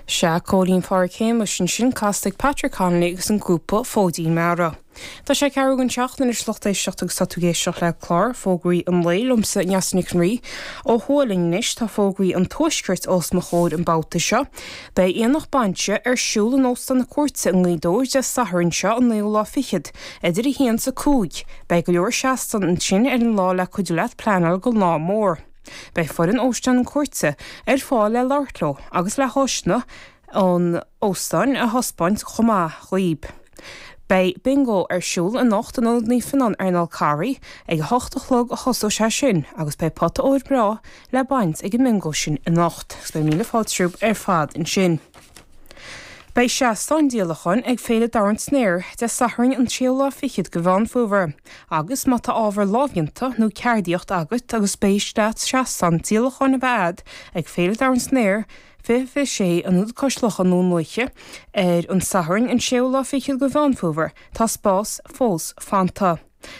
Sea, Cóilín Phádhraic Shéamais ansin casta ag Patrick Connolly agus an grúpa Fóidín Meara. Tá sé ceathrú don seacht anois a lucht éisteachta agus tá tú ag éisteacht le clár fógraí an lae liomsa, Neasa Nic an Rí, ó Thuaidh linn anois. Tá fógraí an Tuaiscirt os mo chomhair an babhta seo. Beidh Aonach Bainse ar siúl in Óstán na Cúirte i nGaoth Dobhair Dé Sathairn seo an naoú lá fichead, idir a haon 's a cúig. Beidh go leor seastáin ansin ar an lá le cuidiú leat pleanáil don lá mór. Beidh foireann Óstán na Cúirte ar fáil le labhairt leo agus le háiseanna an óstáin a thaispeáint chomh maith dhaoib. Beidh bingo ar siúl anocht in Ionad Naomh Fionnán ar an Fhál Carraigh ag a hocht a chlog a thosóidh sé sin agus beidh pota óir breá le baint ag an mbingo sin anocht. Agus beidh míle fáilte romhaibh ar fad ansin. Beidh seastán díolacháin ag Féile Dorn San Aer Dé Sathairn an séú lá fichead de Mheán Fómhair agus má tá ábhar lámhdhéanta nó ceardaíocht agat agus spéis a't seastán díolacháin a bheith agat ag Féile Dorn San Aer 2026 in Ionad Cois Locha i nDún Lúiche ar an Satharn an séú lá fichead de Mheán Fómhair tá spás fós fanta.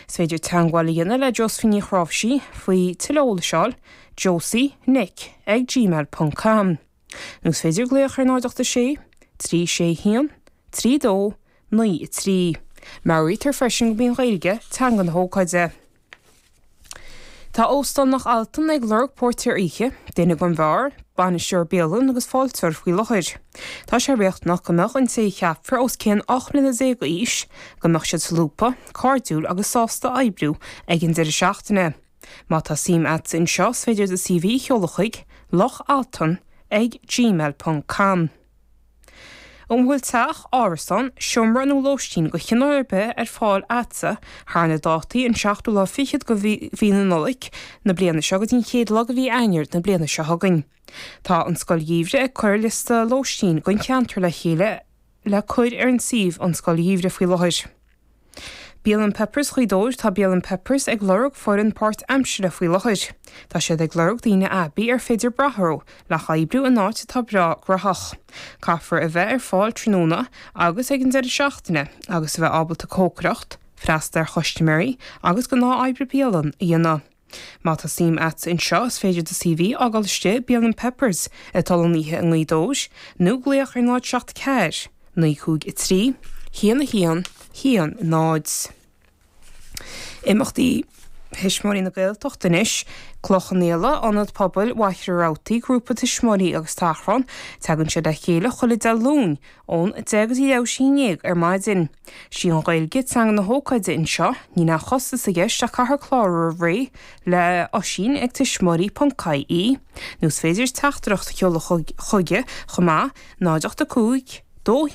Is féidir teagmháil a dhéanamh le Josephine Ní Chnáimhsí faoi tuilleadh eolais, josie nic ag gmail ponc com. Nó is féidir glaoch ar 086 361 3293. Meabhraítear freisin gurb í an Ghaeilge teanga na hócáide. Tá Óstán Loch Altan ag lorg póirtéir oíche, duine don bheár, bainisteoir bialann agus fáilteoir faoi láthair. Tá sé riachtanach go mbeadh an té a cheapfar os cionn 18 mbliana d'aois, go mbeadh siad solúbtha, cairdiúil agus sásta oibriú ag an deireadh seachtaine. Má tá suim a't in seo is féidir do CV a sheoladh chuig, loch-altan ag gmail ponc com. An bhfuil teach, árasán, seomra nó lóistín de chineál ar bith ar fáil a'dsa thar na dátaí an seachtú lá fichead de mhí na Nollag na bliana seo go dtí an chéad lá de mhí Eanáir na bliana seo chugainn. Tá an Scoil Gheimhridh ag cur liosta lóistín don cheantar le chéile le cur ar an suíomh an Scoil Gheimhridh faoi láthair. Bialann Peppers Ghaoth Dobhair Tá Bialann Peppers ag lorg foireann páirtaimsire faoi láthair. Tá siad ag lorg daoine aibí ar féidir brath orthu le hoibriú in áit atá breá graitheach. Caithfear a bheith ar fáil tráthnóna agus ag an deireadh seachtaine agus a bheith ábalta cócaireacht, freastal ar chustaiméirí agus gnáth-oibre bialann a dhéanamh. Má tá suim a't anseo is féidir do CV a fhágáil istigh i mBialann Peppers ag dul an oíche i nGaoth Dobhair nó glaoch ar 074 953 1110. Imeachtaí Thuismitheoirí na Gaeltachta anois, Cloich Cheann Fhaola, Ionad Pobail Mhachaire Rabhartaigh, Grúpa Tuismitheoirí agus Tachrán, tagann siad le chéile chuile Dé Luain, ón deich go dtí a dó dhéag ar maidin. Sí an Ghaeilge teanga na hócáide anseo, níl aon chostas i gceist ach caithfear clárú roimh ré le Oisín ag tuismitheoirí.ie nó is féidir teachtaireacht a sheoladh chuige chomh maith, 085 212